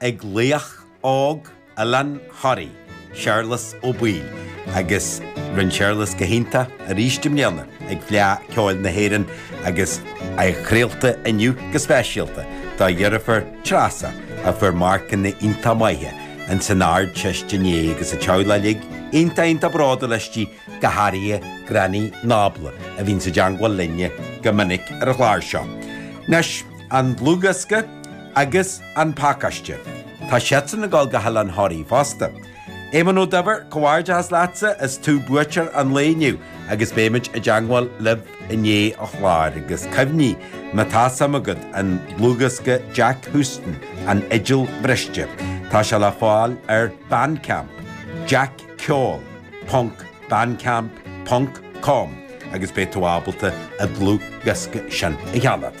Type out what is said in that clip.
ag laoch óg Oileán Thoraí, Séarlas Ó Baoill, agus rinne Séarlas go hiontach arís i mbliana ag Fleadh Ceoil na hÉireann agus é craolta inniu go speisialta dá dheirfiúr Treasa a fuair marcanna iontach maithe in san Ard Teist inné agus a teaghlach uilig iontach iontach bródúil aisti go háirithe Granny Nábla a bhíonn sa dteangmháil linne go minic ar an chlár seo. Anois an dlúthdhiosca. Agus an pacáiste? Tá siadsan ag dul go hOileán Thoraí fosta. Éamonn Ó Duibhir, comhghairdeachas leatsa, is tú buaiteoir an lae inniu agus beimid i dteangmháil libh i ndiaidh an chláir agus cuimhnigh, má tá suim agat an dlúthdhiosca Jack Huston, An Fhidil Bhriste, tá sé le fáil ar Bandcamp, jackceol ponc bandcamp ponc com agus beidh tú ábalta an dlúthdhiosca sin a cheannach.